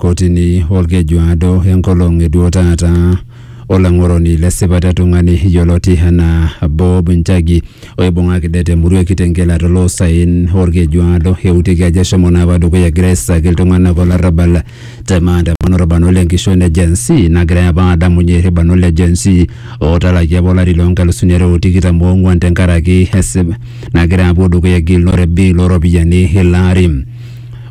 kotini olkejuado enkolong eduo taata olang'oroni le sipata etung'ani yioloti anaa Bob Njagi oibung'aki det emurua e Kitengela toloosaen olkejuado eutiki ajo eshomo naa apa dukuya egira aisaki iltung'anak olarrabal te maandamano orbanot le nkishon le Gen Z nagirai apa aadamunye irbanot le Gen Z ootalakie apa olari loo nkalusuni are o tikitam oong'wan tenkaraki esip nagira apuo dukuya egilunore e bill ooropiyiani ilo ari.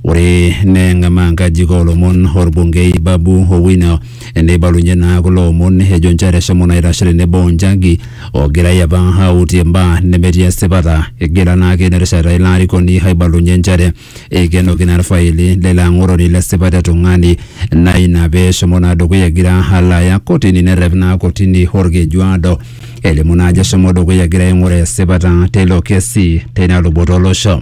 Ore neng'amaa nkajijik oolomon olbungei Babu Owino neibalunye naa kulo omon ejo nchere eshomo naa aitashe tenebo o Njagi ogirai apa autie mbaa nemetii esipata. Egira naake ina rishata ilo arikoni aibalunye nchere eikenoki naa ilfaili leilo ang'oroni le sipat e tung'ani naa ina pee eshomo naa dukuya egira alo aya kotini nerrep naa kotini olkejuado elimu naa ajo eshomo dukuya egira aing'uraa esipata teilo kesi teina luboto o losho.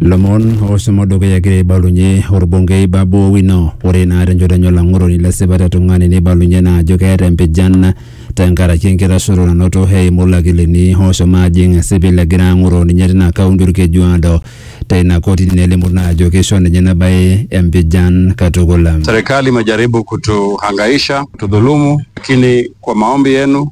lomon oshomo dukuya egira aibalunye orbungei Babu Owino ore naa tenchoto enye olang'oroni le sipata e tung'ani neibalunye naa ajo keeta empijan tenkaraki enkitashoto nanoto eimu ilakilini oshomo ajing esipil egira ang'oroo ninye tina kaunti Olkejuado teina kotini nelimu naa ajo keisho ninye ina bae empijan katukul. Serikali imejaribu kutuhangaisha, kutudhulumu, lakini kwa maombi yenu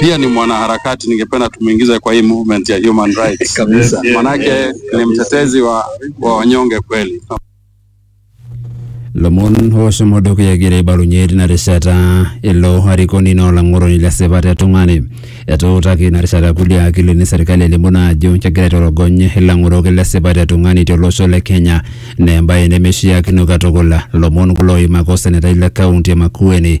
pia ni mwanaharakati, ningependa tumuingize kwa hii movement ya human rights kabisa, manake ni mtetezi wa, wa wanyonge kweli. lomon oshomo dukuya egira aibalunye tina rishata ilo arikoni naa olang'oroni le sipat e tung'ani etuutaki ina rishata kulie akilini serkali elimu naa ajo kegira aitorogony ilang'orok le sipat e tung'ani tolosho le kenya naa embaye nemeishiakino katukul lomon kulo oimaka osenetai le kaunti e makueni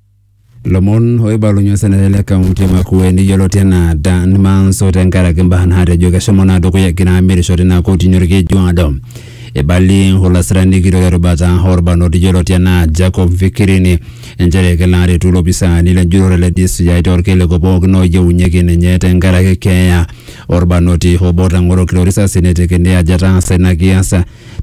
lomon oibalunye osenetani le kaunti e Makueni yioloti enaa Dan Manso tenkaraki mbaa naatejo keshomo naa dukuya egira amirisho tina kotini Olkejuado. Eibalie olasirani kitok erubata orbanot yioloti enaa Jacob Fikirini nchere kelo aretu ilopisaani le njurore le DCI torkiliku pookin oyieunyieki ninye tenkaraki keeya orbanoti obo otang'oroki torisasi netekini ajo etaasa ina kias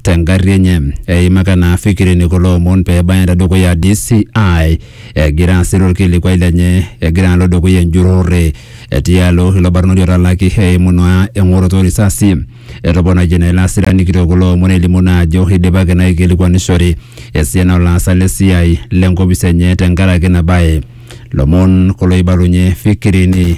te ngarri enye. Eimaka naa Fikirini kulo omon pee ebaya te dukuya DCI egira asiru olkilikuai lenye egira alo dukuya enjurrore tialo ilo barnoti otalaki eimu naa eng'oroto o risasi. Etoponayie naa ilo asirani kitok kulo omon elimu naa ajo eidipaki naa aikilikuanishore esiana o laasak le siai le nkopis enye tenkaraki ina bae. Lomon kulo oibalunye Fikirini.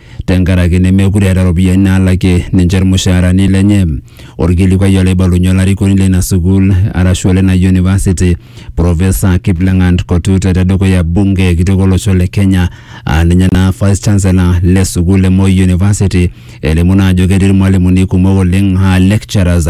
tenkaraki nemekure eeta iropiyiani naalakie ninche irmushaarani lenye. Orkilikuai olaibalunye olarikoni leina sukuul arashu olena university Professor Kipleng'at Kotute tedukuya bunge kitok olosho le Kenya aa ninye naa vice chancellor le sukuul e Moi University elimu naa ajo ketii irmalimuni kumok oleng aa lecturers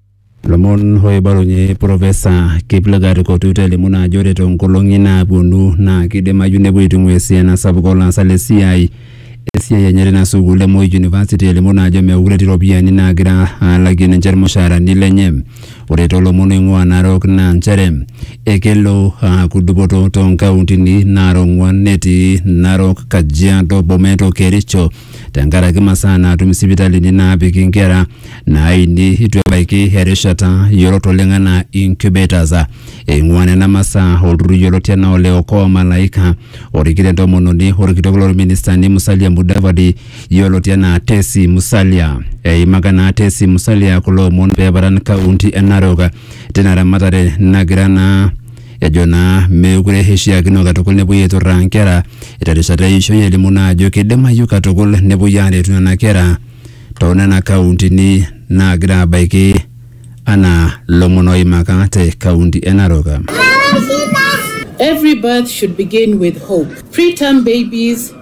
Lomon oibalunye Profesa Kiplagat Kotuta elimu naa ajo ore toonkolong'i naapuonu naa kidimayu nepuo aitung'ua esiana sapuk olaasak le siai esiai enye tina sukuul e Moi University elimu naa ajo meekure etii iropiyiani naagira aalakie ninche irmushaarani lenye. Ore toolomon oing'ua Narok naa nchere ekelo aaku dupoto toonkauntini naara ong'wan netii Narok, Kajiado, Bomet o Kericho tenkaraki masaa naatum isipitalini naapiki inkera naaini itu ebaiki erishata yiolot oleng anaa incubators. Eing'ua nena masaa olturrur yioloti anaa ole Okoa Malaika orikito entomononi orkitok lorministani Musalia Mudavadi yioloti anaa Tesi Musalia. Eimaka naa Tesi Musalia kulo omon peeparan kaunti e Narok tina ramatare nagira naa Ejo naa meekure eishiakino katukul nepuoi aiturraa nkera terishata eishoi elimu naa ajo keidimayu katukul nepuoi aaretu nena kera too nena kauntini naagira abaiki anaa lomon oimaka te kaunti e Narok. Every birth should begin with hope. Preterm babies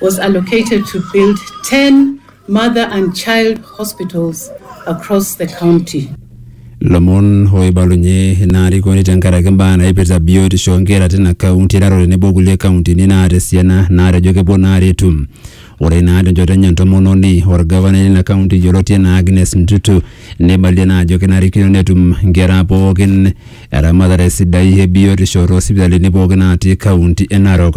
was allocated to build 10 mother and child hospitals across the county. lomon oibalunye ina arikoni tenkaraki mbaa naipirta biotisho oonkera tina kaunti eraro tenebo kulie kauntini naata esiana naatejo kepuo naa aretu ore naa tenchoto enye entomononi orgavanai lina kaunti yioloti enaa Agnes Ntutu neibalie naa ajo kenarikino netum nkera pookin eramatare sidai e biotisho toosipitalini pookin naatii kaunti e Narok.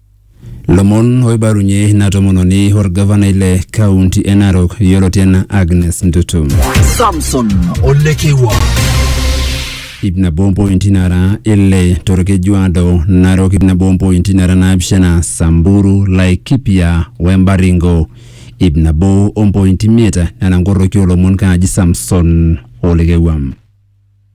Lomon oibalunye ina tomononi olgavanai le kaunti e Narok yioloti enaa Agnes Ntutu. Samson Olekewa. Ip nabo ompointi nara ile torkeju ado Narok ip nabo ompointi nara naapishana Samburu, Laikipia we Baringo ip nabo ompointi imiet nena nkoroki oolomon kaaji Samson Olekewa.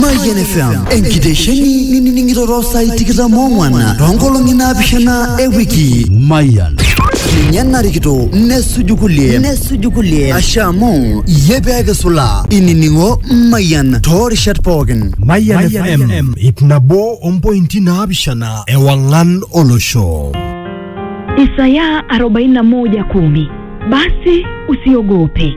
Mayian FM enkitesheni nining'iroro saai tikitam oong'wan toonkolong'i naapishana e wiki. Mayian. Ninye narikito nesuju kulie nesuju kulie ashe amu iyie pee kisula inining'o Mayian toorishat pookin. Mayian FM ip nabo ompointi naapishana ewang'an olosho. Isaya 41:10 Basi usiogope,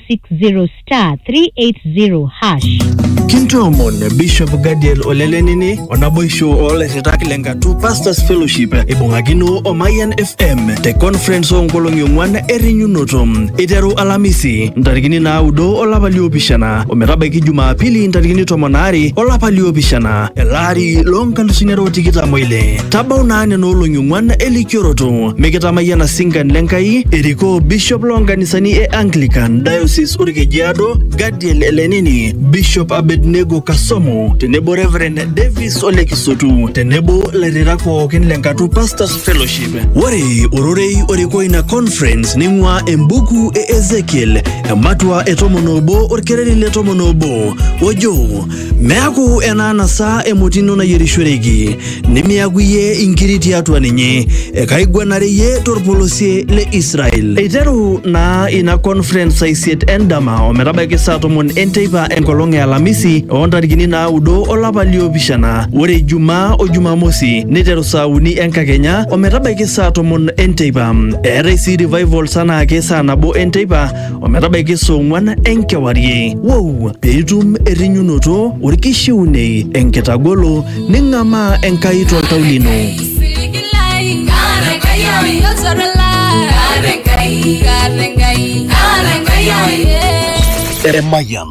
0 star 380 hash. Kintoomon Bishop Gadiel Olelenini o naboisho oolairritak le Ngatu Pastors Fellowship eibung'akino o Mayian FM te conference oonkolong'i ong'wan errinyunoto eiteru Alamisi ntarikini naaudo olapa liopishana ometabaiki Jumapili ntarikini tomon aare olapa liopishana elaari loonkalusuni are o tikitam oile. Tabau naa nena olong'i ong'wan elikioroto Mikitamayiana singan le Nkai erikoo Bishop loo nkanisani e Anglican Diocese Olkejiado Gadiel Elenini, Bishop Abednego Kasomo tenebo Reverend Davis Ole Kisutu tenebo lairritak pookin le Nkatu Pastors Fellowship. Ore ororei orikoo ina conference neing'uaa embuku e Ezekiel ematua e tomon obo olkereri le tomon obo ojo meaku enaanasa emoti ino nayierishoreki nimiaku iyie inkiri tiatua ninye, ekaiguanare iyie torpolosie le Israel. Eiteru naa ina conference saa isiet endama ometabaiki saa tomon enteipa enkolong e Alamisi oo ntarikini naaudo olapa liopishana. Ore Ijumaa o Jumamosi neiteru saa uni enkakenya ometabaiki saa tomon enteipa. Eetai sii revivals anaake saa nabo enteipa ometabaiki saa ong'wan enkewarie. Wou! Piitum errinyunoto, orkishiunei, enkitagolo, Ning'amaa Enkai toltau lino. Emayian.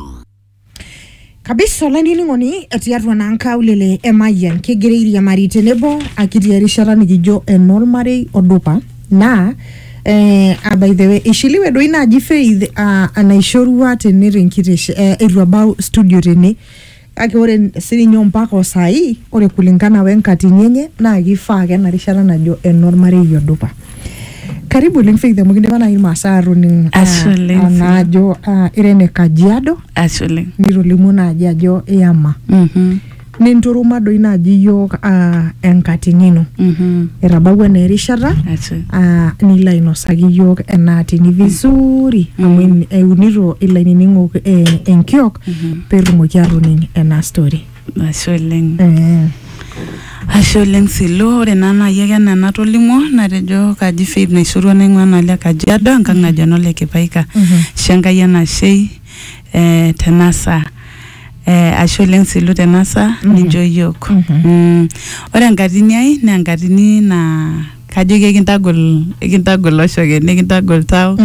kabisa olainining'oni tiatua naa nkaulele emayian kigira airiamari tenebo akitii erishata nikijo enoolmarei odupa naa eh, ah, by the way ishiliwe doi naaji faith ah, enaishorua tene tenkiteshe eh, eitu abau studio tene Kake ore sininye ompaka o saai, ore kulingana we nkatini enye naa keifaa ake ena rishata najo enormarei odupa. Karibu oleng Faith amu kidipa naaji Irmaasai aatoning Ashe oleng, ah, naa ajo ah, ira ene Kajiado Ashe oleng. nitolimuo naaji ajo iyama. Mhm, Ninturuma doi naaji iyiok ah, enkatini ino. mhm. Etabawua naa erishata Ashe. ah, nilo ainosaki iyiok ena atini vizuri amu eunito ilainining'ok eh, enkiok petumoki atoning ena story Ashe oleng. eh. Ashe oleng Silu, ore naa naaji ake enaa enatolimuo natejo kaji Faith Naishorua naing'ua naa le Kajiado enkang naji eno le Kipaika. Ashe Enkai enashei eh, tena saa. Eh, ashe oleng Silu tena saa ninchoo iyiook. Mhm. Mm. Ore enkatini ai naa enkatini naa kajoki ekintagol ekintagol oshoke nikintagol tau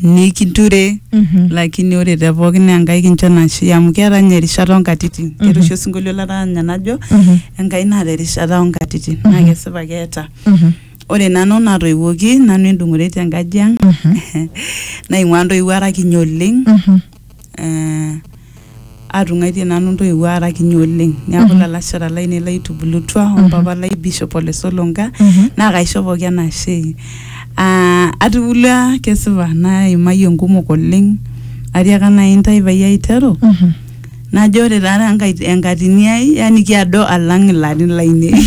nikinture Mhm. lakini ore te pookin naa enkai kincho nashe amu keeta ninye erishata onkatitin keeta oshi osinkolio lataa ninye najo Mhm. enkai naata erishata onkatitin naa kesipa keeta Mhm. ore nanu natoiwuoki nanu endung'ore tenkaji ang Mhm. naing'ua ntoiwuo ara kiny oleng Mhm. eh, atung'aitie nanu ntoiwuo ara kinyi oleng neaku Mhm. lalashera lainei laitubulutua Mhm. ompapa lai bishop ole solonka Mhm. naa kaisho pooki enashe Ah, atubulua kesipa naimayie nkumok oleng atiaka nai intae payie aiteru Mhm. najo ore taata enkai- enkatini ai yani kiado alang ilarin lainei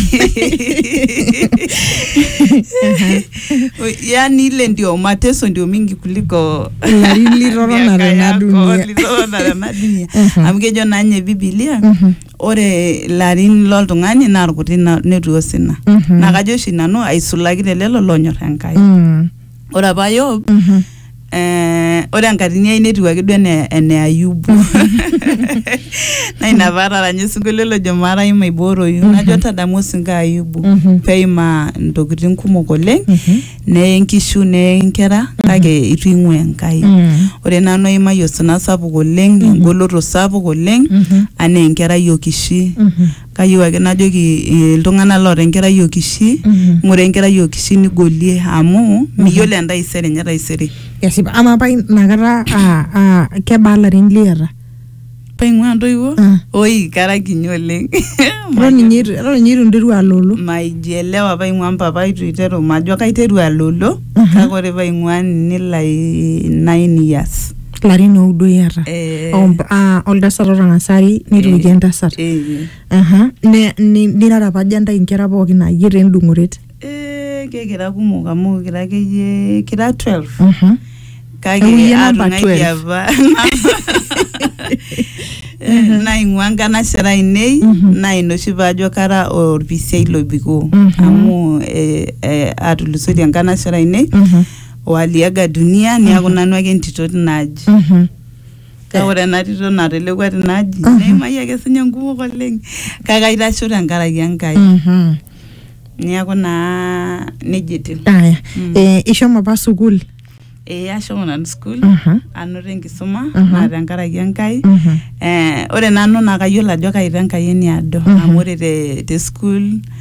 yaani ile ndio mateso ndio mingi kuliko Ilarin liroro miaka nara ena yako, dunia. liroro nara ena dunia Mhm. amu kejo naa ninye bibilia Mhm. ore ilarin loltung'ani naa irkuti na- netu osina Mhm. naa kajo oshi nanu aisulaki te lelo lonyor enkai Mm. ore apa yob Mhm. Eh, ore enkatini ai netiu ake duo ene ene ayubu na ina paataranya osinkolio lojo maarai maibooroyu najo tadamu osinko ayubu Mhm. peimaa intokitin kumok oleng Mhm. neye nkishu neye nkera kake itu ing'ua enkai Mm. ore nanu aimayie osina sapuk oleng engoloto sapuk oleng Mhm. anaa enkerai okishi Mhm. Kayieu ake najoki iltung'ana loota enkerai o Kishi, ng'ura enkerai o Kishi nigolie amu miyiolo entaisere enye taisere. Kesipa. Amaa apa ina kata aa aa kebaa ilarin liata? Paing'ua intoiwuo? Ah. Oi kara kinyi oleng. Eton ninye eitu eton ninye eitu interua aloolo? Maijielewa paing'ua mpapa eitu eiteru majo kaiteru aloolo kake ore paing'ua nini lai nine years. larin oudo iata Eh. Om- ah, oltasat otangasari netoiki entasat Eh. Aha, ne- ni- nirara apa aja ntae inkera pookin ayie taa endung'oret Eh, kekira kumok amu kira akeyie kira 12 Mhm. kake Euyie namba atung'aitie 12. apa Eh, naing'ua nkanashera ainei Mhm. naa ina oshi paajo kara olpisiai lobikoo Mhm. amu eh, eh, atulusoitie nkanashera ainei Mhm. waliaga dunia niaku nanu ake entito tina aji Mhm. kake ore ena tito natelekua tina aji Mhm. neimayie ake sinye nkumok oleng kake aitasho tenkaraki enkai Mhm. niaku naa nejia etiu Aya. Mm. Eh, ishomo apa sukuul ee ashomo nanu school Mhm. anoto enkisuma Mhm. naa tenkaraki enkai Mhm. eh, ore nanu naa kayiolo ajo kaita enkai eniado Mhm. amu ore te, te school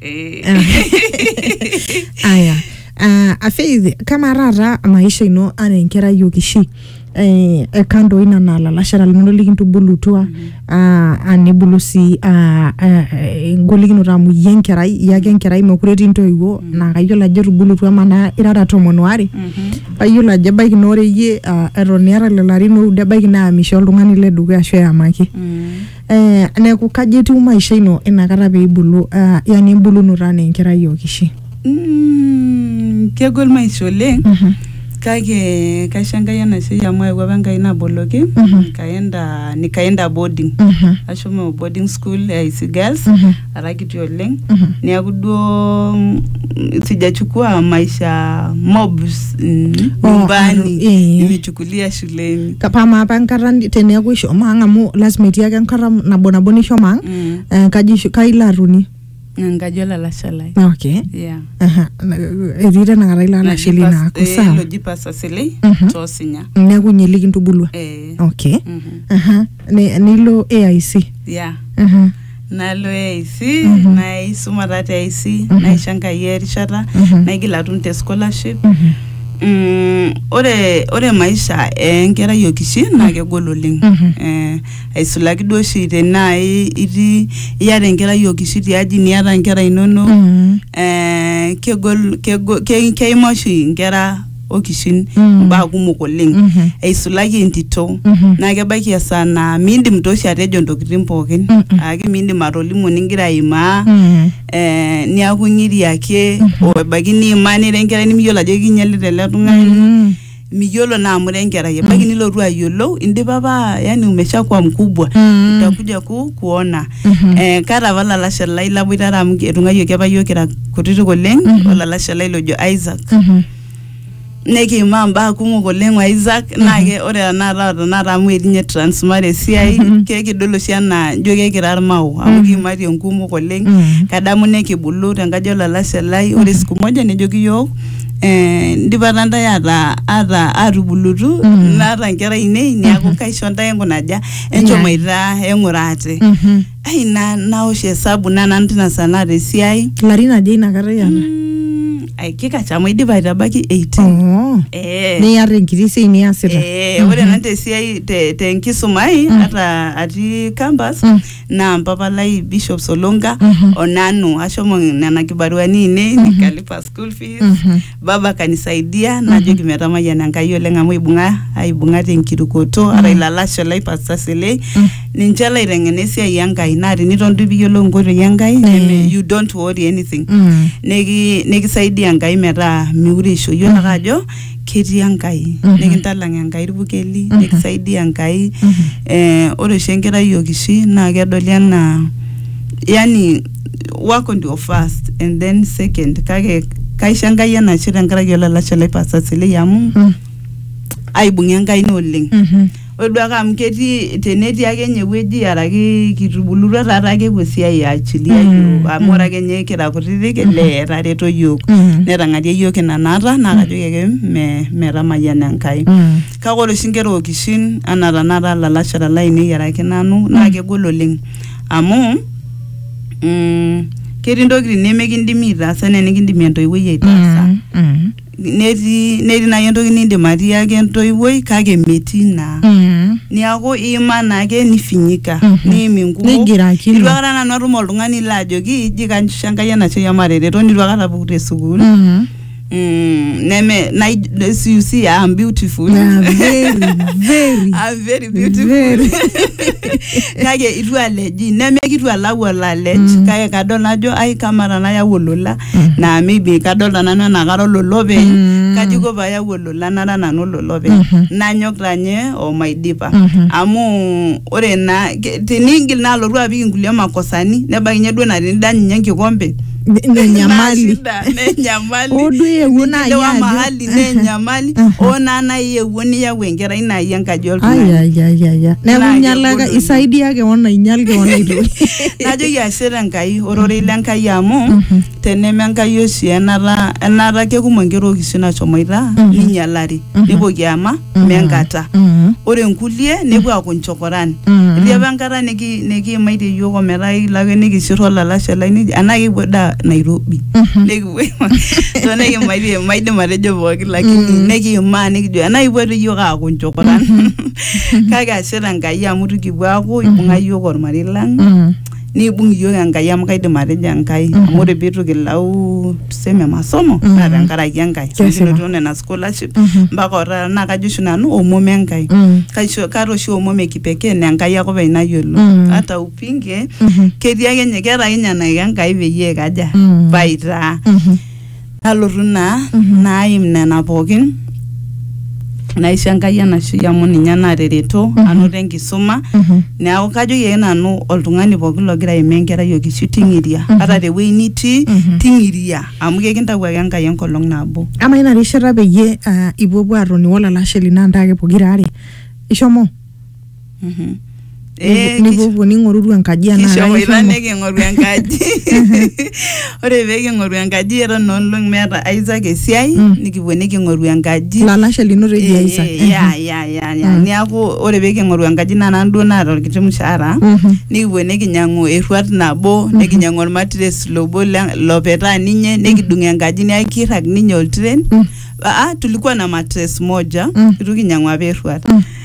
Eh. aya uh, afeithi kamaa taata maisha ino anaa enkerai okishi eh, ekando ina naa lalashera linono likintubulutua ah, ah, nibulu sii ah, ah, engolikinoto amu iyie enkerai iyie ake enkerai mekure etii intoiwuo naa kayiolo ajo etubulutua manaa irara tomon oare kayiolo ajo ebaiki naa ore iyie ah, eton iata lelo arin oudo ebaiki naa misho oltung'ani ledukuya ashu eyamaki eh, neeku kaji etiu maisha ino inakata peibulu ah, yani embulunoto anaa enkerai okishi Mm, kegol maisha oleng Mhm. kake kaisho enkai enashei amu ayewuo apa enkai naboloki Mhm. nikaenda nikaenda boarding Mhm. ashomo boarding school ya isi girls Mhm. ara kiti oleng Mhm. neaku duo mm, sijachukua maisha mobs mm, Oh, nyumbani eh. nimechukulia shuleni Ka- pama apa enkata ni- teneeku ishomo ang amu lasima etii ake enkata nabo nabo nishomo ang Mm, eh, enkaji isho- kai ilo atonie enkaji olalashe lai okay yeah. Aha, na- etii tenakata ilo alashe lino Loji aaku pas- eh, sawa loji pasa selei Mhm. tosinya neeku nye likintubulua eh, okay mhm, Aha, ni- nilo aic yeah. Aha. nalo AIC Mhm. naisuma taa te AIC Mhm. naisho Enkai erishata Mhm. naigil atum te scholarship Mhm. Mm, ore ore maisha enkerai okishi naa kegol oleng Mhm. eh, aisulaki duo oshi tenaa i- itii iyata enkerai okishi tiaji niata inkera inonok Mhm. eh, kegol, kegol ke, keimaa oshi inkera okishin Mm. mbaa kumok oleng Mhm. eisulaki entito Mhm. naa kebaiki esaa naa miindim tooshi atejo ntokitin pookin Mm-mm. aake miindim atolimu ningira aimaa Mm. eh, niaku ng'iri ake Mhm. o ebaiki niimaa nira enkerai nimiyiolo ajo kinyalita ele tung'ani Mm. miyiolo naa amu ira enkerai ebaiki nilotu ayiolou indipa apa yani umeshakuwa mkubwa Mm. utakuja ku kuona Mhm. Eh, kaata apa olalashe lai laboitare amu etung'ayioki apa yiok kira kutitik oleng Mhm. olalashe lai lojo Isaac Mhm. nikiimaa mbaa kumok oleng o Isaac naa ke ore tenakata tenakata amu etii ninye transmara esiai Mhm. kekidol oshi anaa ijo kekira irmao amu Mhm. kiimatie nkumok oleng Mhm. kadamu nekibulu tenkaji olalashe lai ore Mhm. siku moja nejoki yiok eh, ndipa taa ntae ata ata atubulutu Mhm. naata nkera ainei neaku kaisho ntae enkunaja enchom aidhaa eng'ura ate Mhm. ai na naosh esabu na nanu tina saa naata esiai ilarin aja inakata iyata Mm, ai kikacham aidipa aitabaki 18 Oo. Eh. niata enkiti siai niasita Eh, ore nanu tesiai te- tenkisuma ai ata atii campus Mm. naa mpapa lai bishop solonga Mhm. onanu ashomo nena kibaruani ainei nikalipa school fees Mhm. baba kanisaidia najoki metamayiana Enkai oleng amu ibung'a aibung'a tenkirukoto ara ilalashera lai Pastor Selei ninche laiteng'ena esiai Enkai naa teniton duo piyiolou inkoitoi Enkai neme- you don't worry anything Mm. Niki- nikisaidia Enkai metaa miure eisho yiolo ake ajo ketii Enkai nikintalang Enkai irpukeli nikisaidia Enkai eh, ore oshi enkerai okishui naa kedoli enaa yani wako ndio first and then second kake kaisho enkai enashe tenkaraki olalashe lai pasa silei amu Mm. aibung'a enkaina oleng Mhm. ore duo ake amu ketii tenetii ake nye ewueji araki kitubulutua taata ake epuo esiai eachilia Mm, yiok amu mm. ore ake nye kira kutitik ele etareto yiok Mhm. netang'arie yiok ina naata naa kajoki ake me metamayiana enkai Mm. kake ore oshi inkera okishin anaa tanakata ilalashera lainei araki nanu naa kegol oleng amu mm, ketii ntokitin nemekindimi aitaasa enaa enikindimi entoiwuoi aitaasa Mm, mm, netii netii naaji entoki nindim atiaki entoiwuoi kake metii naa mm. niaku iima naake nifinyika Mhm. niim inkumok Nigirakino. itu akata nanu atum oltung'ani laajoki iji kaisho enkai enashe amu atareto nitu akata apuk te sukuul Mm. Mm, neme na you see I'm beautiful. Yeah, very, very. I'm very beautiful. Very. kake itu aleji neme kitu alau olalej mm. kake kadol najo ai kama tanayau olola mm. na maybe kadol tananu enaa kara ololope mm. kaji ko payau olola nara nanu ololope mm -hmm. nanyok tanye omaidipa mm -hmm. amu ore naa ke- tinigil naa alotu apik inkulie makosani nebakinye duo na tinidany ninye enkikompe nenyamali Nashida, nenyamali Odu eewuo naaji Nilewa ajo- mahali nenyamali Aha. oo naa nai eewuo niyau enkerai nai enkaji oltung'ani ayayayaya neeku Naa inyalaka kegol isaidia keon ainyal keon aitoki najoki ashe tenkai ororei lenkai amu teneme enkai oshi enata enata kekumok nkera okishu nashomoita ninyalari nipoki ama Mhm. menkata Mhm. ore nkulie nepuo aaku nchokoran Mhm. etii apa enkata niki- nikiimaitie yiok ometaa ekilo ake nikisir olalashe lai niji anaa kipuo daa nairobi Mhm. nikipuo so nikimaitie maidim atejo pooki lakini Mm. nikiimaa nikijo anaa kipuo toi yiok aaku nchokoran kake ashe tenkai amu tukipuo aaku ibung'a yiok ormarei lang Mhm. nibung iyiook Enkai amu kaidim atejo Enkai mm -hmm. amu ore pitu kilau tuseme masomo mm -hmm. naa tenkaraki Enkai kinotito nena scholarship mm -hmm. mpaka otaata naa kajo oshi nanu omom Enkai mm -hmm. kaisho kaata oshi omom ekipekee naa Enkai ake openy nayiolo mm -hmm. hata upinge mm -hmm. ketii ake nye keeta ake nye enaiko Enkai peyie kaja mm -hmm. paitaa mm -hmm. nalotu naa naim nena pookin naisho enkai enashui amu ninye natareto anoto enkisuma neeku kajoki ake nanu oltung'ani pookin logira aimaa enkerai okishu ting'iria ata tewuei nitii Mhm. ting'iria amu kekintau ake enkai enkolong nabo ama ina rishata peyie ah, ipuopuo atoni wolalashe lino antaake pokira are ishomo Mhm. Eh, kis- nipuopuo ning'oruru enkaji enaa kishomo ilo kaishomo. niking'oru enkaji ore pee king'oru enkaji eton noolong meeta Isaac esiai Mm. nikipuo niking'oru enkaji lalashe lino teji Eh, Isaac. eh, ya ya ya ya Mm. niaku ore pee king'oru enkaji naa nanu duo naata orkiti mshahara Mhm. nikipuo nikinyiang'u erruat nabo nikinyiang'u ormatres lobo le- lopetaa ninye nikidung enkaji niaku kirrag ninye oltiren Mm. ah, tulikuwa na matres moja Mm. itu kinyiang'u apa erruat Mm.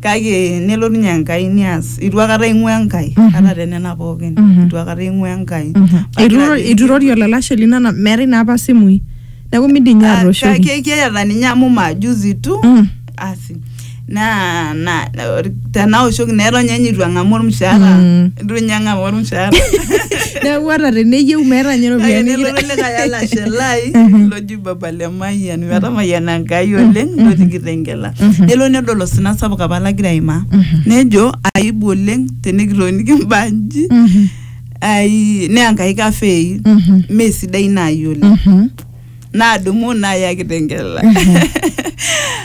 kake nelo ninye Enkai nias itu akata ing'ua Enkai ata te nena pookin Mhm. itu akata ing'ua Enkai Mhm. Pagira Eitu- ajo- eitu irori olalashe lino ana meetae naa apa simui neeku midim ninye Ah, atooshoki kake keeta ninye amu majuzi tu Mm. asi na na na- tenaoshoki neton ninye itu ang'amu ormushaara Mm. itu ninye ang'amu ormushaara neeku ata teneyieu meeta ninye kake iropiyiani nelotu likae alashe lai Mhm. loji baba le mayian metamayiana enkai oleng ilo tikitengela nelo nedol osina sapuk apa lagira aimaa nejo aibu oleng tenikitoniki mbaa nji ai naa enkai kafei mee sidai naayi oleng naadumu naaya kitengela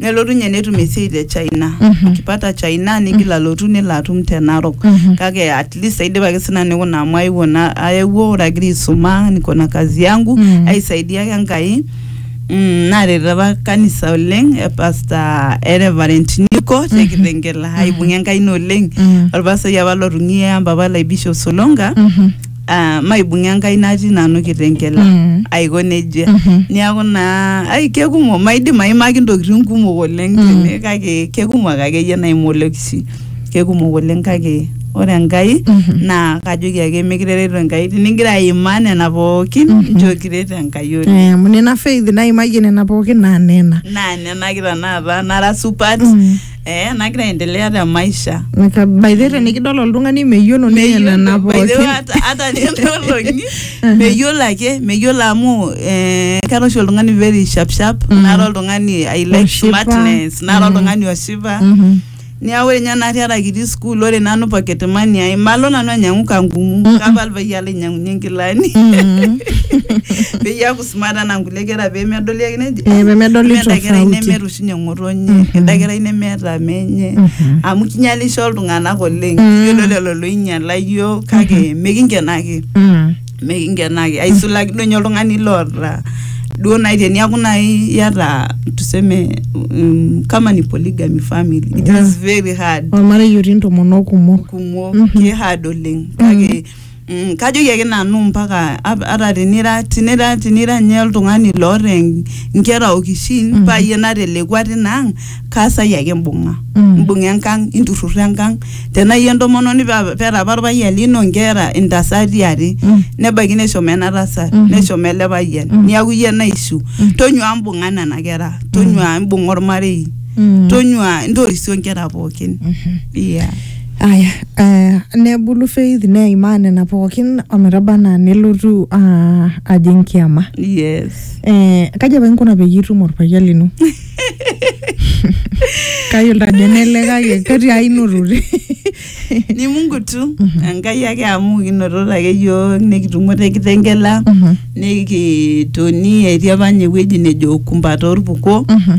nelotu ninye netum esiai te China Mhm. akipata China nigil alotu nelo atum te Narok Mhm. kake at least aidipaki sina nikuna amu aewuo na aewuo ore agira aisuma niko na kazi yangu Mhm. aisaidia ake Enkai mm, naret apa kanisa oleng e pastor e Reverend Niko te Kitengela aibung'a Enkai ina oleng Mhm. olpasai apa lotung'ie ampapa lai Bishop Solonga Mhm. ah, maibung'a enkai natii nanu kitengela Mm. aiko nejia Mhm. niaku naa ai kekumok maidim aimaki ntokitin kumok oleng Mm. tene kake kekumok akeyie naimu olekisi kekumok oleng kake ore enkai Mhm. naa kajoki ake mikirereto enkai tinigira aimaa nena pookin Mhm. nchoo kiret enkai oleng Eh, amu nena faith naimayie nena pookin naa nena naa nena kita naata nara supat Mm. eh, nagira aendelea te maisha Naka- by the way, tenikidol oltung'ani meyiolo ninye nena By the way, pookin hata- hata nenolongi meyiolo ake meyiolo amu eh, kara oshi oltung'ani very sharp sharp Mhm. nara oltung'ani i like Oshipa. smartness nara Mhm. oltung'ani oshipa Mhm. niaku ore ninye natii ara kitii school ore nanu pocket money ai malo nanu ainyiang'u kangumu Mhm. kapa alpayian lainyang'unye nkilani Mhm. peyie eaku sumata naa nkulie kera pee medoli ake neji Eh, pee medoli "Mee enda kerai tofauti." nemeeta oshi ninye ng'otonye enda kerai nemeeta menye amu kinyalisho iltung'anak oleng yiolo lelo loinyala yiok kake mikinkenaki Mm. mikinkenaki aisulaki duo ninye oltung'ani loota duo nai teniaku nai iyata tuseme mm, kama ni polygamy family it is very hard ormarei otii ntomonok kumok kumok Mhm. ki hard oleng kake Mm, kajoki ake nanu mpaka ap- ata tinira tinira tinira nye oltung'ani loota en- nkera okishin mm. payie natelekua tinang kaasai ake imbung'a Mm. imbung'a enkang inturrurro enkang tenaa iyie entomononi pa- peeta apa orpayian lino nkera intasati are Mm. nebaiki neshomo ena tasat Mhm. neshomo ele payian Mm. niaku iyie naishu Mm. tonyua imbung'a nena kera tonyua imbung'a ormarei Mm. tonyua intorisio nkera pookin Mhm. yeah. Aya, eh, nebulu faith neimaa nena pookin ometaba anaa nelotu ah, ajing kiama yes eh, kaji apa inkuna peyie itum orpayian lino kayiolo ajo nele kake ketii ai notote ni mungu tu enkai ake amu kinototo ake yiok nikitumo te kitengela Mhm. nikitoni etii apa ninye ewueji nejo kumba torpuko Mhm.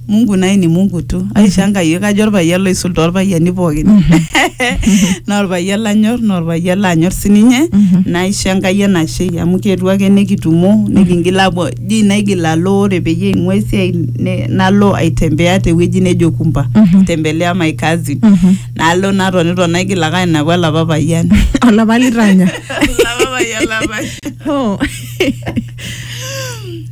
Mungu naye ni Mungu tu. Aishanga yiok ajo orpayian loisul torpayiani pookin. Naa orpayian lanyor, naa orpayian lanyor sininye. Naisho Enkai enashe amu kietuo ake nikitumo nikingil apuo dii naigil alo ore peyie aing'ua esiai ne- nalo aitembea tewueji nejo Kumba. Tembelea my cousin. Nalo natonito naigil ake ainepu olapa payian. Olapa litanya. Olapa payian lapash. Oh.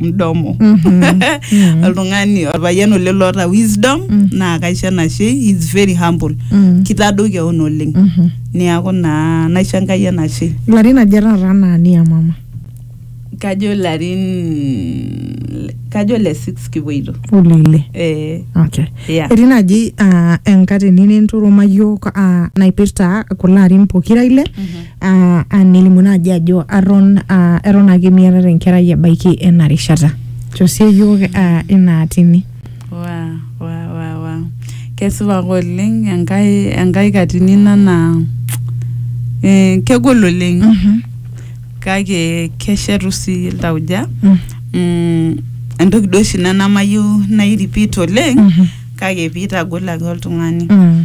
mdomo oltung'ani orpayian oleng loota wisdom naa kaisho enashe he is very humble kitadou keon oleng niaku naa naisho enkai enashe larin aja taata anaa nia mama kajo larin kajo le six kipuoito olele eh, okay yeah. etii naaji ah, enkatini ninturuma yiok ah, naipirta kulo arin pokira ile uh, anilimu naaji ajo aton uh, eton ake miatata enkerai ebaiki ena rishata tosie yiok uh, ina atini wa wa wa wa kesipa ake oleng enkai enkai katini ina naa eh, kegol oleng kake keshetu sii iltauja Mm. mm, entoki duo oshi ina namayieu nai repeat oleng Mhm. kake piitagol ake oltung'ani Mm.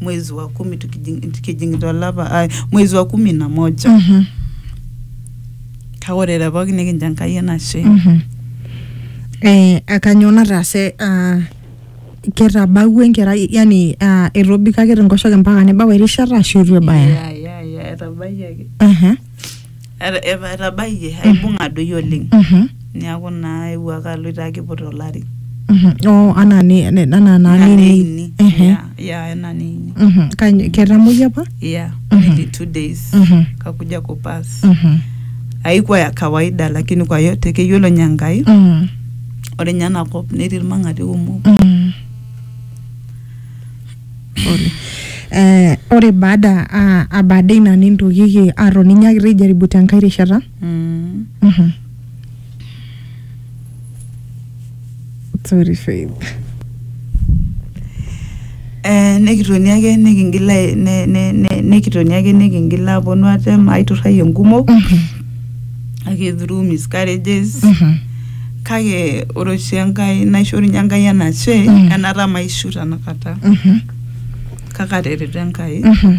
mwezi wa kumi tukijing- tukijing'ita olapa ai mwezi wa kumi na moja Mhm. kake ore te pooki nikincho enkai enashe Mhm. Eh, akanyoo nataase ah, ketabawua enkerai yani ah, etobikaki tenkoshoke mpaka nebau erishata ashu itu ebaya Ya, ya, ya, etabayiaki Aha. Eta- eva- etabayie aibung'a doi oleng Mhm, niaku naa eewuo ake aloito ake aiput olari mhm. Oh, anaa ni- ne- anaa naa Ina nini. neini. Ehe. Yeah, yeah, ena neini Mhm. Kanyo- ketamoyia apa? yeah Mhm. nearly two days Mhm, kakuja kupas mhm, haikuwa ya kawaida lakini kwa yote keyiolo nye Enkai mhm, ore nye ena kop netii irmang'ati kumok mhm. Pole. Eh, ore baada ah, ah, baada ina nintokiki atoni nyaakita aijaribu tenkae rishata Mm. Mhm. sorry Faith. Eh, nikitoni ake nikingil ai- ne- ne- ne- nikitoni ake nikingil aponu atem aiturrai enkumo Mhm. ake through miscarriages Mhm. kake ore oshi enkai naishorunye enkai enashe Mm. enata maishu tanakata Mhm. kake atereto enkai Mhm.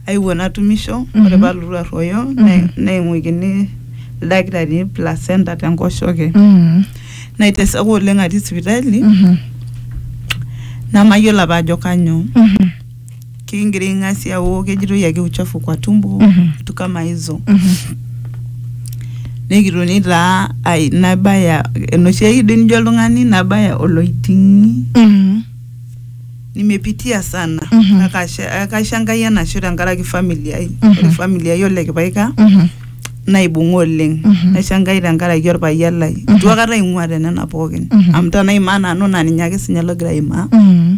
aiwuo natumisho Mhm. ore palotu arruoyo Mhm. ne- neing'uikini ildakitarini placenta tenkoshoke Mhm. naiteseka oleng atii sipitali Mhm. namayiolo apa ajo kanyoo Mhm. kiingiring'asia wo kejitoi ake uchafu kwa tumbo Mhm. vitu kama hizo nikitoni taa ai nabaya enoshi ake doi nijo oltung'ani nabaya oloiting'i Mhm. nimepitia sana Mhm. na kasha- kaisho enkai enashe tenkaraki famili ai Mhm. ore famili ai ole kipaika Mhm. naibung'a oleng Mhm. naisho enkai tenkaraki orpayian lai Mhm. itu akata aing'ua tenena pookin Mhm. amu tanaimaa nanu naa ninye ake sinye logira aimaa Mhm.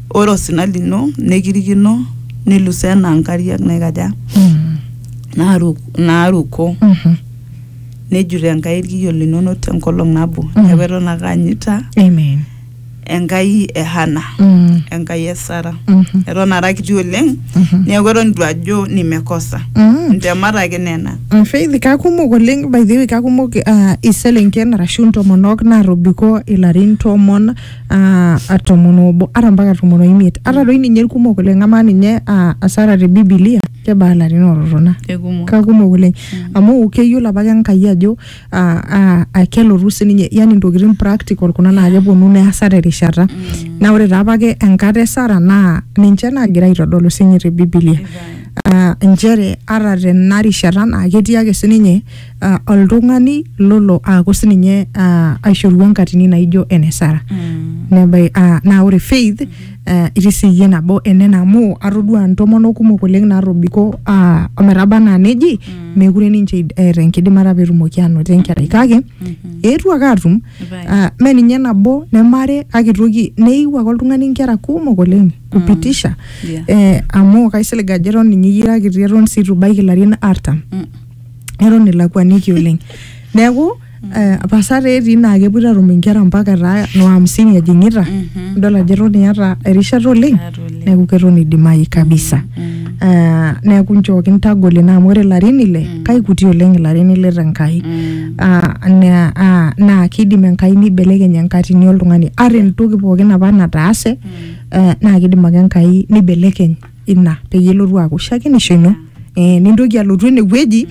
Ore osina lino nekirikino nilusoo enaa nkariak naikaja Mm. naaru- naaruko Mhm. nejut Enkai irkiyo linono tenkolong nabo Mm. neeku eton ake aanyita Amen. Enkai e Hana Mm. Enkai e Sara Mhm. eton ara kiti oleng Mhm. neeku eton itu ajo nimekosa Mm. ntemat ake nena Mm, Faith, kakumok oleng by the way kakumok uh, iselenken arashu ntomonok natobiko ilarin tomon ah, ah, tomon obo ata mpaka tomon oimiet ata doi ninye irkumok oleng amaa ninye ah, asara te bibilia kebaa ilarin ototona kekumok kakumok oleng amu keyiolo apake enkai ajo ah, ah, ah, kelotu sininye yani ntokitin practical kuna naa keponu neasa terishata naa ore taa apake enkata e sara naa ninche naagira aitodolu sinye te bibilia ah, inchere ata tena rishata naa ketii ake sininye uh, oltung'ani lolo aaku sininye uh, aishorua nkatini naijo ene sara Mm. nebai uh, naa ore faith uh, itii siyie nabo enena amu atodua ntomonok kumok oleng natobiko uh, ometaba anaa neji mm. mekure ninche id- eeta enkidimata petumoki anoto enkerai kake Mhm. eetuo ake atum Right. uh, me ninye nabo nemare kake itoki neiu ake oltung'ani nkera kumok oleng kupitisha Yeah. eh, amu kaisilig ajo eton ninye iyira kiti eton sii itu ibaiki ilarin artam Mm. eton ilakuaniki oleng neeku eh, pasa taa etii naa kepuoito atum inkera mpaka etaa no hamsini ejing'ita Mhm. idol ajo eton iyata erishata oleng Eata oleng. neeku keton idimayu kabisa Eh, neeku nchooki ntagol ina amu ore ilarin ile kaikuti oleng ilarin ile tenkai Mm. Ah, na- ah, naa kidim enkai nibelekeny enkatini oltung'ani ata entoki pookin apa nataase eh, naa kidim ake enkai nibelekeny ina peyie elotu aaku shakenisho ino eh, nintoki alotu enewueji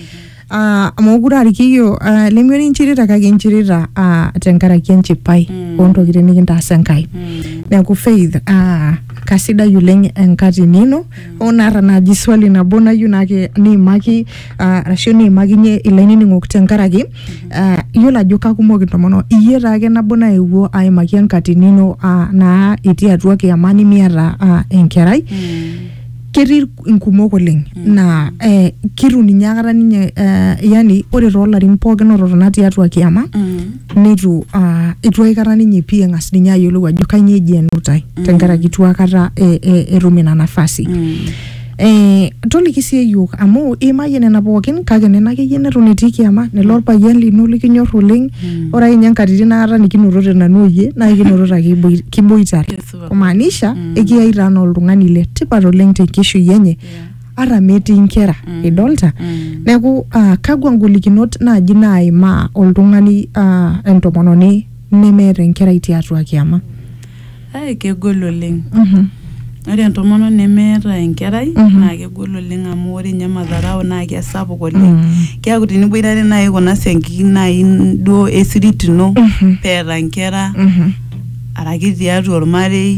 ah, amu mokure aa irkiyo ah, lemiori inchirita kake inchirita ah, tenkaraki enchipai Mm. ontokitin nikintaasa Enkai Mm. neeku faith ah, kasidai oleng enkatini ino oo naata naaji swali nabo nayieu naake niimaki ah, arashu niimakinye ilainining'ok tenkaraki Ah, iyiolo ajo kakumok intomonok iyie taake nabo naewuo aimaki enkatini ino ah, naa itii atua kiyama nimiata ah, enkerai ketii inkumok oleng naa eh, kitu ninye akata ninye eh, yani ore toolarin pookin ototona tiatua kiyama neitu ah, eitu aikata ninye pii eng'as ninye ayiolou ajo kainyoo eji enutai tenkaraki itu akata eh, eh, etum ina nafasi Eh, toliki sii eyiok amu iimayie nena pookin kake nena akeyie neton etii kiama nelo orpayian lino likinyor oleng Mm. ore akeyie nkatitin naata nikinotote nanu oyie naa ikinotote ake iboi- kiboitare Kesipa. kumaanisha Mm. ekiyai taa naa oltung'ani le tipat oleng tenkishui enye ata metii inkera Mm. idolta Mm. neeku ah, kakwa ngolikinot naaji naimaa oltung'ani ah, entomononi nemeeta enkerai tiatua kiama Ai kegol oleng. Ore entomononi nemeeta enkerai naa kegol oleng amu ore ninye madharau naa kesapuk oleng. Keaku teniboitare naaji kuna siankikin naaji duo e sirit ino pee eeta inkera araki tiatua olmarei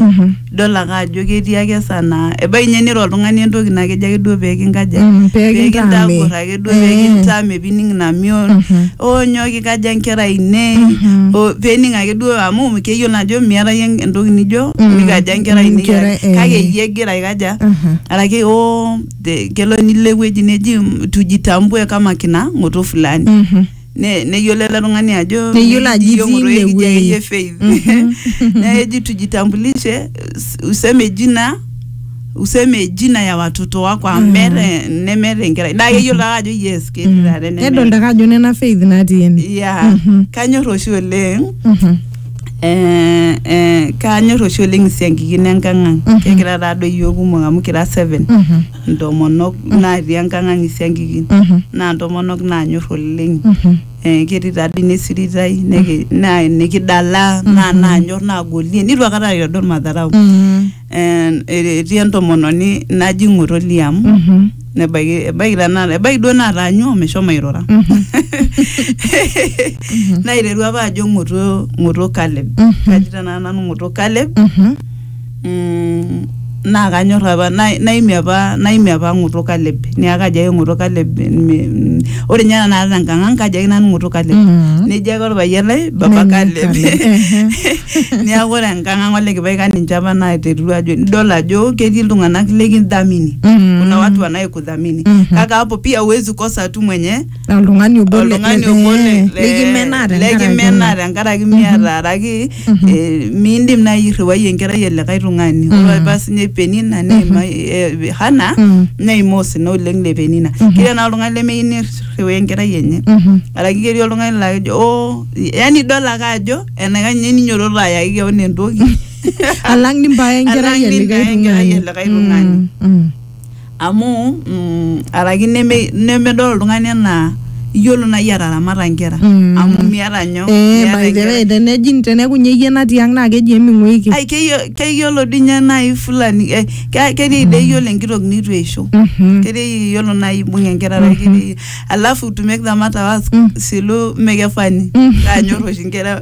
idol ake ajo ketii ake esaa naa ebaiki ninye niro oltung'ani entoki naa kejo ake duo pee kinkaja? Pee kintagor. ake duo pekintaa mepining ina mion onyo kikaja nkera ainei o- pening ake duo amu keyiolo ajo miata yie entoki nijo nikaja nkera ainei Nkera, kake- eh. kake iyie egira aikaja Mhm. araki o te- kelo nilo ewueji neji tujitambue kama kina ng'oto fulani Mhm. Ne- neyiolo ele tung'ani ajo Neyiolo ajo itii "Yiong'oto ine ekijo wuei." akeyie faith neeku eji tujitambulishe us- useme jina useme jina ya watoto wako amu meeta nemeeta enkerai naa keyiolo ake ajo yes ketii taata enemeeta. nedolta ake ajo nena faith natii ene yeah kanyor oshi oleng Mhm. eh, eh, kanyor oshi oleng isiankikin enkang ang Mhm. kegira taadoi iyiok kumok amu kira seven Mhm. ntomonok naatii enkang'ang isiankikin naa ntomonok naanyor oleng eh, ketii taa dii nesiritai neki- naa nikidala naa naanyor naagolie nitu akata aitodol madharau Mm. Eh, etii entomononi naji ng'oto liam Mhm. nebaiki ebaiki tanakata ebaiki duo nataanyua omeshomo airura Mhm. naiteru apa ajo ng'oto ng'oto Caleb Mhm. kaji tanakata nanu ng'oto Caleb Mhm. mm, naa kanyor apa na- naimie apa naimie apa ng'oto Caleb niaku kajo ake ng'oto Caleb me- mm, ore ninye tenakata tenkang ang kajo ake nanu ng'oto Caleb Mm. nejo ake orpayian lai baba Nene Caleb Caleb, ehe. niaku ore enkang ang ole kipaika ninche apa naiterua ajo nidol ajo ketii iltung'anak likidhamini Mm. kuna watu wanayekudhamini Mhm. kaka hapo pia huwezi kosa tu mwenye Na oltung'ani obo le- oltung'ani le- obo le- eh, le- likimenaa tenkaraki likimenaa ina. tenkaraki miata araki eh, miindim naaji irriwai enkerai e likae tung'ani ore apa paa sinye penina neima eh, hana Mhm. neima osina oleng le penina ketii naa oltung'ani lemeyieu nirriwaa enkerai enye Mhm. araki ketii oltung'ani laa kejo oo yani idol ake ajo enaikash ninye ninyototo ayaki keon entoki alang nimbaya enkerai Alang e likae nimbaya enkerai e tung'ani likae tung'ani. Mm, mm. Amu mm, araki neme, nemedol oltung'ani enaa iyiolo naaji ataramata inkera Mm. amu miata nyoo Eh, miata by the enkerai. way, tenejing teneeku ninye iyie natii ang naa keji eming'uiki. Ai keyiolo, keyiolo dii ninye naaji fulani eh, ke- ketii dii eyiolo enkitok neitu eisho Mhm. ketii iyiolo naaji ibung enkerai araki ketii alafu to make the matter worse Mm. silu mekefani Mm. kaanyor oshi inkera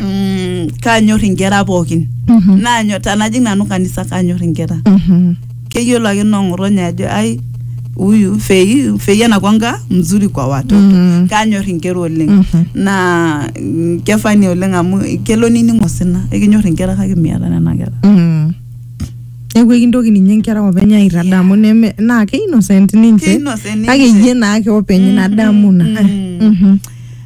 mm, kanyor inkera pookin Mhm. nanyor tanajing nanu kanisa kanyor inkera Mhm. keyiolo ake nong'otonye ajo ai huyu fei fei anakwanga mzuri kwa watoto Mhm. kanyor inkera oleng Mhm. naa mm, kefani oleng amu kelo nining osina ekinyor inkera kake miata nena kera Mm. neeku ekintoki ninye nkera openy aitadamu neme naa ke innocent ninche Ke innocent kake ninche. iyie naake openy ina damu na Mm. Mhm.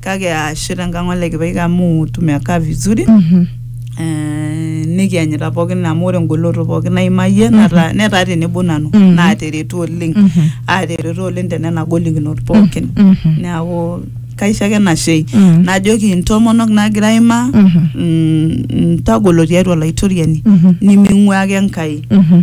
kake aashe tenkang ole kipaika amu tumekaa vizuri Mhm. eh, nikianyita pookin amu ore engoloto pookin naimayie nata- netaa tenebo nanu Mhm. naateretu oleng Mhm. aateretu oleng tenena golikinot pookin Mhm. neeku kaisho ake nashei Mhm. najoki intomonok naagira aimaa Mhm. mm, ntagolo tiatua olaitoriani Mhm. niming'uaa ake Enkai Mhm.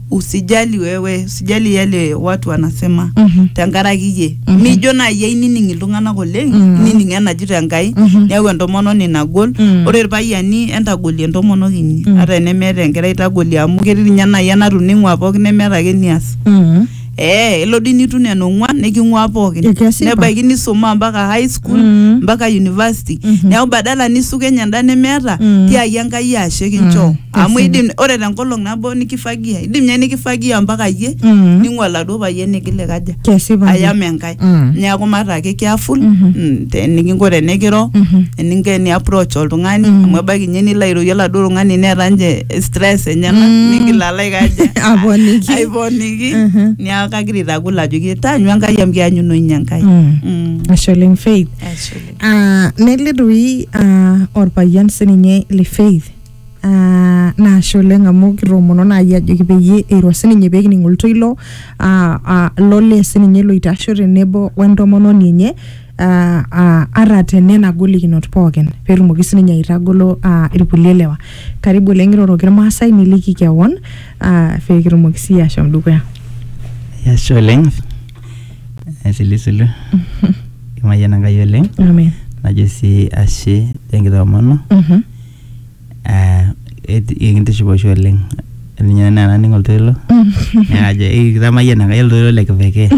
usijali wewe usijali yale watu wanasema Mhm. tenkaraki iyie Mhm. mijo naaji ainining iltung'anak oleng Mhm. nining enajito enkai Mhm. neeku entomononi nagol Mhm. ore irpayiani entagolie entomonok inyi Mhm. ata enemeeta enkerai tagolie amu ketii ninye naaji enatuning'ua pookin nemeeta ake nias Mm. ee elo dii nitu nena ong'uan niking'ua pookin Ekesipa. nebaiki nisuma mpaka high school Mhm. mpaka university Mhm. neeku badala nisukenye enda nemeeta Mhm. tiaki enkai ashe kinchoo Mhm. amu idim ore tenkolong nabo nikifagia idim nye nikifagia mpaka iyie Mm. ning'ua oladuo payian nigil aikaja Kesipa. ayam enkae Mm. neeku maata ake careful mm, te- enikinko tenikiro eninko eni approach oltung'ani amu ebaiki nye nilo airorie oladuo tung'ani neeta nje stress enyena nigil alo aikaja Aponiki. aiponiki Mhm. neeku kagira aitagol ajoki taanyu enkai amu kianyuno inye enkai Mm. Mm. Ashe oleng Faith. Ashe oleng. Ah, nelidoi ah, orpayian sininye le Faith Ah, naashe oleng amu kitoomono naaji ajoki peyie eiro sininye pekining oltoilo ah, ah, lolee sininye loitasho tenebo wentomononi enye ah, ah, ata tenena golikinot pookin petumoki sininye aitagolo ah, irkulie lewa karibu oleng iroroki irmaasai niliki kewon ah, pekitumoki siyie ashom dukuya Ashe oleng. Asilisilu. Imayiana Enkai oleng. amen Najo sii ashe tenkitoomono. Mhm. eh, et- ekintiship oshi oleng ninye naa naning oltoilo neajo kitamayiana Enkai oltoilo le kipekee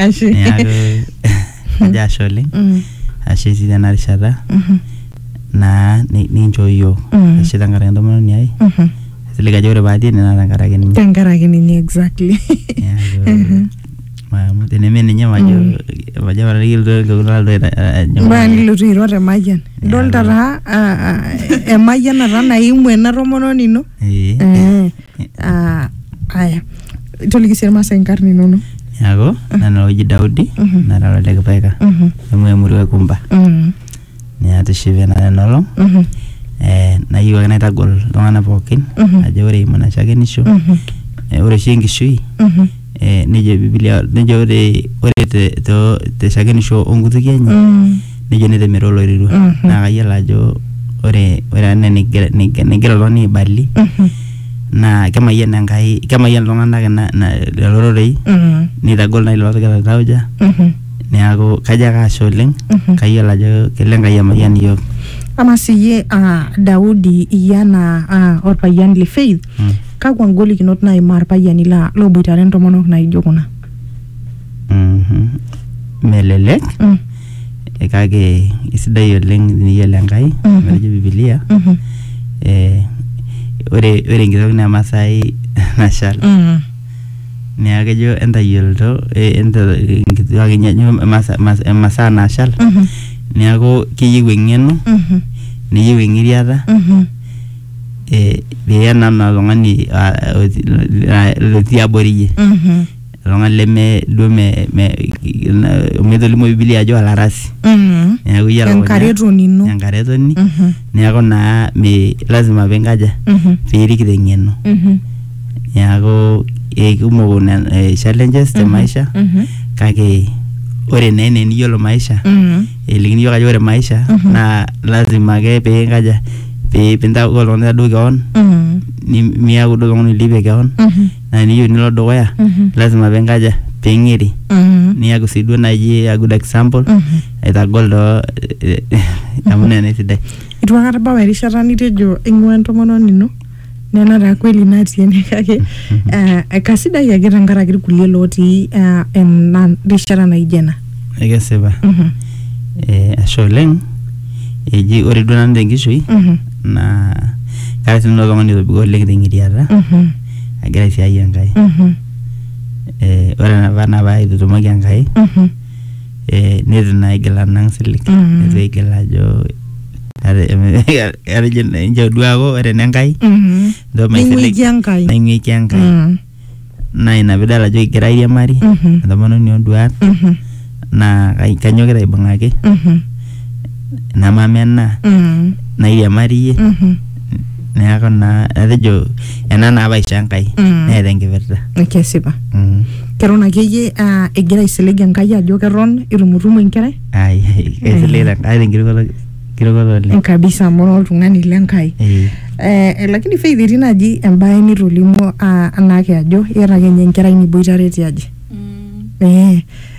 Ashe. neaku ajo ashe oleng Mm, ashe sii tena rishata mhm, naa ni- ninchoo yiok Mm. ashe tenkaraki entomononi ai mhm. silig ajo ore paatii ene naa tenkaraki ninye Tenkaraki ninye exactly. Neaku, Mhm. Mamu teneme ninye majo majo apa tayiolo iltokitin naloito ajo. mbaya nilotu airo te mayian idolta taa ah, ah, emayianata naimu ena tomononi ino Eh. Eh, ah, aya toliki sii irmaasai inkarn inono Neaku nanu oji Daudi Mhm. nara ole Kipaika Mhm, amu emurua e Kumba. mhm. Ninye atishipe nanu ena olong Mhm. eh, nayieu ake naitagol iltung'anak pookin Mhm. ajo ore eimu ina shakenisho Mhm. eh, ore oshi enkishui Mhm. eh, nejo bibilia nejo ore ore te, to, te shakenisho onkutuki enye Mm. nejo netemero oloirirua Mhm. naa kayiolo ajo ore ore ena nigira nigira- nigira oltung'ani aibali Mhm. naa kemayian enkai kemayian iltung'anak ina- ina- lelo rorei Mm. neitagol nai lelo ootigilate tauja Mhm. neaku kajo ake ashe oleng Mhm. kayiolo ajo kelo enkai emayian iyiook ama siyie ah, daudi iyie anaa ah, orpayian le faith Mm. kakwa ngolikinot naimaa irpayiani la- looboitare intomonok naijo kuna Mhm. melelek Mm, eh, kake isidai oleng teniyiolo enkai Mhm. metejo bibilia mhm, eh, ore ore enkitok naa emasai nashal mm. neeku kejo entayioloto eh, enta- inkituak enye ajo emasa- mas- emasaa naashal Mhm. neeku keyieu eng'eno Mhm. neyieu eng'iriata Mhm. eh, pee ena naa oltung'ani ah, oti- la- lotii abori iyie Mhm. oltung'ani leme duo me- me- na- amu etolimu bibilia ajo olarasi Mhm. neeku iyie elukunya- Enkaretoni ino. enkaretoni Mhm. neeku naa mi lazima pinkaja Mhm. piirik teng'eno Mhm. neaku eikumok nen- eh, challenges te maisha Mhm. kake ore naa ene niyiolo maisha Mhm. elikini yiok ajo ore maisha Mhm. naa lazima ake pee inkaja pee pintaku oltung'ani taduo keon Mhm. ni- miaku duo oltung'ani oilipie keon Mhm. naa niyieu nilo dukuya Mhm. lazima pee inkaja pee ing'iri Mhm. niaku sii duo naaji a good example Mhm. aitagol too amu nena esidai itu akata bau erishata nitejo ing'ua entomononi ino nena taa kweli natii ene kake eh, kasidai ake tenkaraki irkulie lotii eh, ena rishata naijo ena ekesipa Mhm, eh, ashe oleng eji ore duo nanu tenkishui mhm, naa kara sinanu oltung'ani otobiko oleng teng'iriata mhm, agira aisiai enkai mhm, eh, ore enapa naa paitutumoki enkai mhm, eh, netu naa igil anang silig Mhm. netu igil ajo ate- atejo inchoo duo aaku ore enenkai Mhm. ndo maisilig Ning'uiki Enkai. naing'uiki enkai Mm. naa ina pidol ajo kigira airiamari Mhm. entomononi onduat Mhm. naa kai- kanyokita aibung'aki Mhm. namamenaa Mhm. nairiamariyie Mhm. neeku naa atejo ena naa paisho enkai Mm. neeta enkipirta kesipa Mm. keton akeyie ah, egira aisilig enkai ajo keton itumutumu enkerai ai ai, kaisiligita kaata enkirukoto enkirukoto oleng kabisa amu ira oltung'ani lenkai Eh, Eh, lakini faith etii naaji embae nitolimuo ah, anaake ajo iyata ake ninye enkerai niboitare tiaji Mm. eh,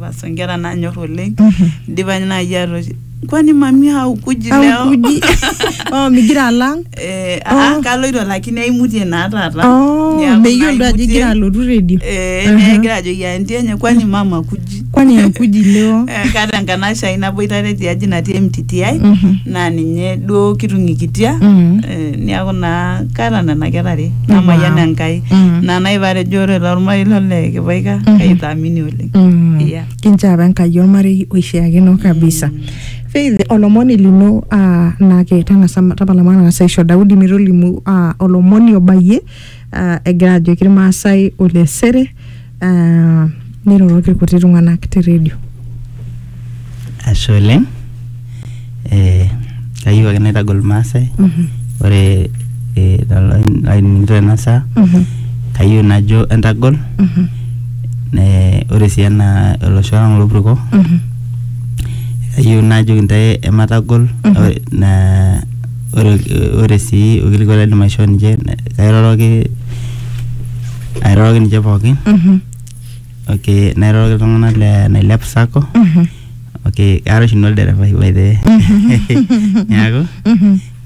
Basi nkera nanyor oleng idipa naaji atoshi kwani mami haukuji leo Haukuji. Oh, migira alang. Eh, Oh. ah, kaloito lakini aimutie naa taata Oh, Niaku meyiolo ajo naimutie. igira alotu redio. Eh, Aha. negira ajoki anti enye kwani mama kuji Kwani haukuji leo? Eh, kaata enkanashe ai naboitare tiaji natii MTTI Mhm. naa ninye duo kitung'ikitia Mhm. Eh, niaku naa kaata nena kera are namayian Wow. Enkai Mhm. naa naiparejo ore tolmarei lole kipaika Mhm. kaitaamini oleng Mm. Yeah. kinchoo apa enkai ormarei oishiakino kabisa faith olomoni lino ah, naa ke tang'asa tapala matang'asa aisho daudi metolimu ah, olomoni obayie ah, egira ajoki irmaasai olesere ah, niroroki irkuti tung'anak te redio Ashe oleng. Eh, kayieu ake naitagol Irmaasai. Ore eh, lelo ainining'ito tena saa, kayieu najo entagol. Eh, ore sii ena olosho lang lopurko, kayieu najoki intae ematagol. Ore na ore ore sii orkilikwai laidim aishoo ninche, kairoroki airoroki ninche pookin. okay nairoroki iltung'anak le nailep sacco okay kaata oshi nanu olderefai by the way neaku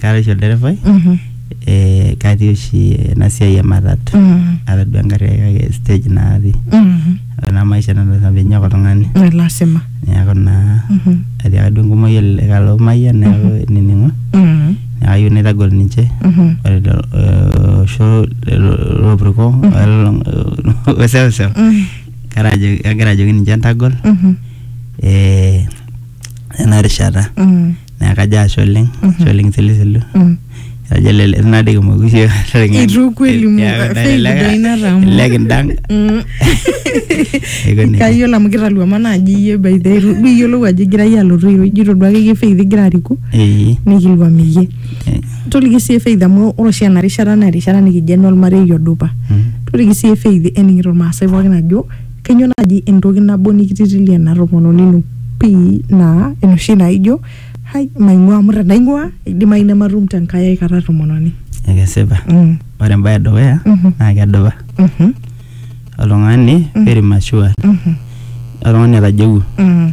kaata oshi olderefai eh, katii oshi ena siai e matatu atadua engarri ai kake stage natii ore naa maisha nanu lasima pinyok oltung'ani lasima neeku naa etiaka duo enkumoi ele kalo mayian neeku nining'o Mm. neeku ayieu naitagol ninche Mhm. ore lelo, eh, osho lelo lopurko weseuseu Mm. kara ajo kagira ajoki ninche entagol Mhm. eh, ena rishata Mm. naa kajo ashe oleng ashe oleng silisilu Mm. ajo lele naa dei kimoki siye Itu kweli mu- faith doi natamu. lek indang Mm. aiko nejia kayiolo amu kitaluama naaji iyie by the way, itu duo iyiolou ajo igira iyie alotu iro ijito duo akeyie faith igira ariku Ee, nikiluam iyie ee, toliki sii faith amu ore oshi ena rishata naa erishata nikijo ene olmarei odupa mm, toliki sii faith ening'ito irmaasai pookin ajo Kainyoo naaji entoki nabo nikititilia ena tomononi ino pii naa enoshi naijo hai maing'ua amu tenaing'ua eidimayu nematum tenkai ai kata tomononi. Ekesipa. Mm. Ore embae edukuya Mhm. naa kedupa. Mhm. Oltung'ani very mature. Mhm. Oltung'ani otajeuo. Mm.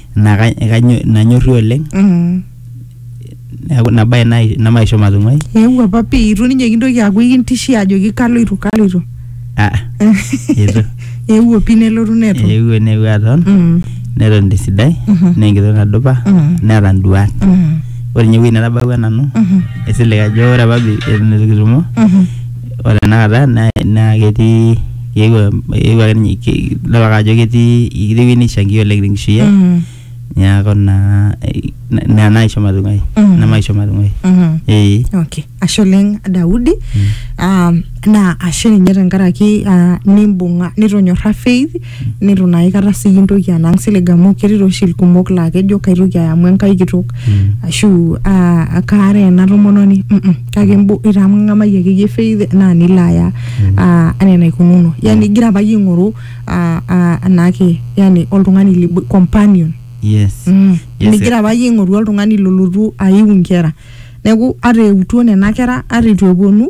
naa ka- kanyo- nanyorri oleng Mm. neeku ina bae nai- nemaisho matung'uai eewuo apa pii itu ninye kintoki aaku ikintishia ajoki kaloito kaloito Ah, Itu. eewuo pii nelotu neton eewuo neewuo aton Mm, neton tesidai Mhm. naa enkitok nadupa Mhm. neeta nduat mm, ore ninye ewueji natabawua nanu mhm, esilig ajo ore apa bi- eton itu kitumo mhm, ore tenakata naa naa ketii eewuo eewuo ake ninye ke- idol ake ajo ketii ketii ewueji neishangia oleng tenkishui ai Mm. niaku naa eh, na- ina naisho matung'ai Mm. ina maisho matung'ai Mhm. ee okay ashe oleng daudi um, naa ashe ninye tenkaraki uh, nimbung'a nitonyorra faith nitu naa aikata sii intoki anang silig amu ketii tooshi ilkumok laa kejo kaitoki aya amu enkai kitok Mm. ashu ah, akaara ena tomononi mm -mm, kake imbo- itang'amayie akeyie faith naa nilo aya ah, anaa enaikununo yani igira apa iyie aing'oru ah, ah, anaake yani oltung'ani libo- companion yes Mm. Yes, migira apa iyie aing'oru oltung'ani lolotu aiu inkera neeku ata eutuo nena kera ata eitu eponu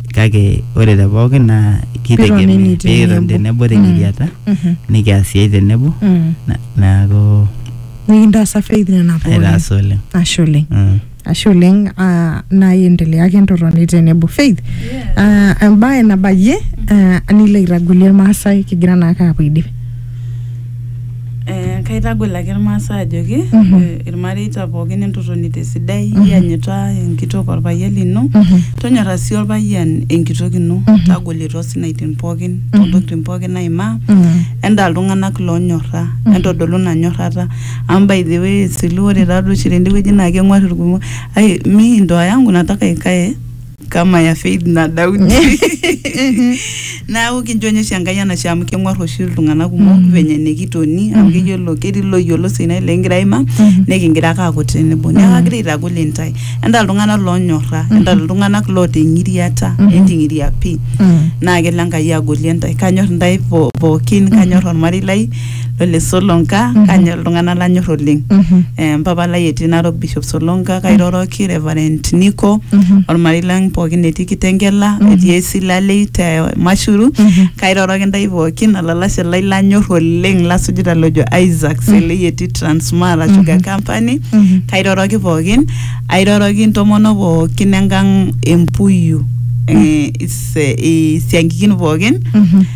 kake ore te pookin naa kitegemea Pitonini pikiton tenebo. tenebo tenkiriata Mhm. nikias siai tenebo Mm. na- neaku nikintaasa faith nena pookin aitaas oleng ashe oleng Mm. ashe oleng ah, naai endelea ake entotoni tenebo faith ah, embae nabayie ah, nilo aitagolie irmaasai kigira naake apuo aidip Eh, kaitagol ake irmaasai ajoki Mhm. eh, irmareita pookin entotoni tesidai Mhm. iyanyita enkitok orpayian lino Mhm. tonyora sii orpayian enkitok ino Mhm. tagoli tosinaitin pookin Mhm. tontokitin pookin naimaa Mm. endaa iltung'anak lonyorra Mhm. entodolu ina nyorrata amu by the way silu ore taadoi oshi tendewueji naa keng'uar irkumok ai mi ndoa yangu nataka ikae kama ya faith na daudi naaku kincho ninye oshi enkai enashe amu keng'uar oshi iltung'anak kumok venye nikitoni amu keyiolo ketii loyiolo sinai likingira aima nikingira ake aaku tenebo neeku agira aitagol intae entaa iltung'anak loonyorra entaa iltung'anak loota eng'iriata enting'iria pii naa kelo enkai agolie intae kanyor intae po- pookin kanyor ormarei lai Ole Solonka kanya iltung'anak lanyor oleng Eh, mpapa lai etii Narok Bishop Solonka kairoroki Reverend Nico ormarei lang pookin etii Kitengela etii Esilalei te Mashuru kairoroki ndai pookin olalashe lai lanyor oleng lasujita lojo Isaac Selei etii Transmara Sugar Company kairoroki pookin airoroki ntomono pookin engang Empuyu eh, is- eh, isiankikin pookin